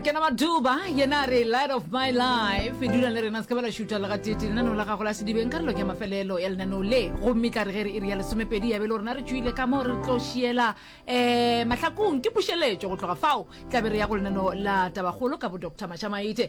kena maduba yena a re light of my life e dula le rena se ka ba la šuta le gatete lenaneo la gago la sedibeng karolo ke mafelelo ya lenaneo le gomme tla re ge re e re ya lesomepedi ya be le rona re tšwile ka moo re tlo šiela um eh, mahlakong ke pušeletšo go tloga fao tla be re ya go lenaneo la tabagolo ka bo doctor mašamaite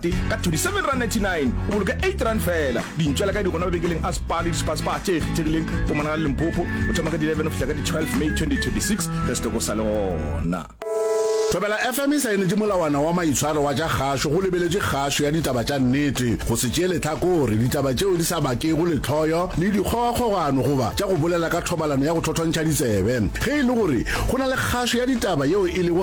Tee ka 27 rand 99 o boloka 8 rand fela. Dintšwela ka di gona mabekeleng a Spar le di-Spar-Spar tše kgethegileng go monagala le Limpopo go thoma ka di 11 go fihla ka di 12 May 2026 ge setoko sa le gona. Thobela FM e saenetše molawana wa maitshwaro wa tša kgašo go lebeletše kgašo ya ditaba tša nnete, go se tšee lehlakore, ditaba tšeo di sa bakego lehloyo le dikgogakgogano goba tša go bolela ka thobalano ya go thothontšha ditsebe. Ge e le gore go na le kgašo ya ditaba yeo e lego